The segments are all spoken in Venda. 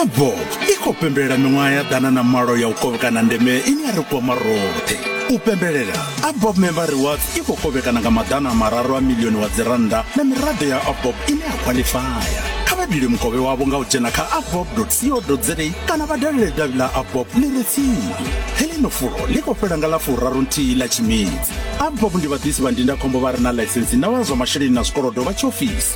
abob i khou pembelela miṅwaha ya ḓana na malo ya u kovhekana ndeme ine ya ri kwama roṱhe u pembelela abob member rewards i khou kovhekana nga maḓana a mararu a milioni wa dzirannda na miraḓo ya abob ine ya khwaḽifaya kha vha dile mukovhe wavho nga u dzhena kha abob co za kana vha dalele davhi ḽa abob ḽi re tsini heḽino fulo ḽi khou fhela nga ḽa furaru nthihi ḽa tshimedzi abob ndi vhaḓisi vha ndindakhombo vha re na ḽaisensi na vha zwa masheleni na zwikolodo vha tshiofisi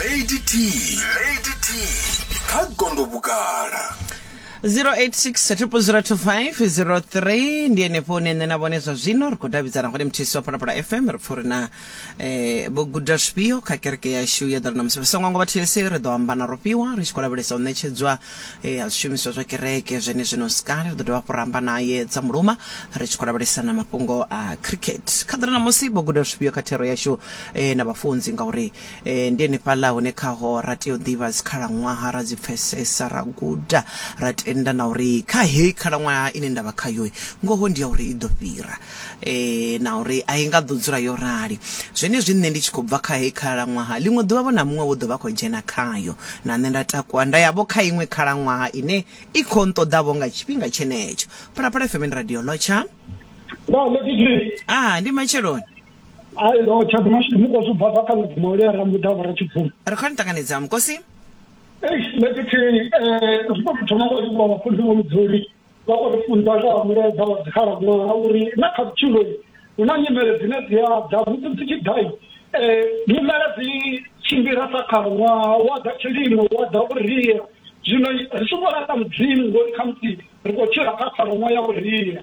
lady t lady t kha gondo vhugala 0860002503 ndi ene fone nṋe na vhone zwa zwino ri khou davhidzana hone mthisi wa phalaphala fm ri pfa uri na eh, vho guda zwifhio kha kereke yashu ya ḓora na musi songo ngo vha these ri ḓo amba na rofhiwa ri tshi khou lavhelesa u ṋetshedzwa e, ha zwishumiswa zwa kereke zwenezwino ska ri ḓo dovha hafhu ramba naye dza muluma ri tshi khou lavhelesa na mafhungo a cricket kha ḓira ṋamusi vho guda zwifhio kha thero yashu e, na vhafunzi ngauri e, ndi henefhaḽa hune khaho ra tea u ḓivha dzikhalaṅwaha ra dzi pfesesa ra guda ra tenda na uri kha heyi khalaṅwaha ine nda vha khayo ngoho ndi ya uri i ḓo fhira na uri a i nga ḓo dzula yo rali. Zwenezwi nṋe ndi tshi khou bva kha heyi khalaṅwaha, ḽiṅwe ḓuvha vho na muṅwe vho ḓo vha khou dzhena khayo, na nṋe nda takuwa nda ya vho kha iṅwe khalaṅwaha ine i khou nṱoḓa vho nga tshifhinga tshenetsho. Phalaphala FM ndi radio Lotsha. Vha ḽe Didier. Ah, ndi Matsheloni. Ai lo tsha ḓi mashudu mukosi ubva bva kha mubvumo ule ra mbuḓa vho ra tshibvumo. Ri khou ni ṱanganedza mukosi. Eish ḽe Didier eh ri khou thoma ngo livhuwa vhafunzi vho mudzuli. vha khou ri funza nga ha mulaedza wa dzikhalaṅwaha uri na kha vhutshiloi hu na nyimele dzine dzi a dza musi dzi tshi ḓai um nyimele dzi tshimbila sa khalaṅwaha wa ḓa tshilimo wa ḓa vhuria zwino ri tshi vhona kha mudzimu ngori khamusi ri khou tshila kha khalaṅwaha ya vhuria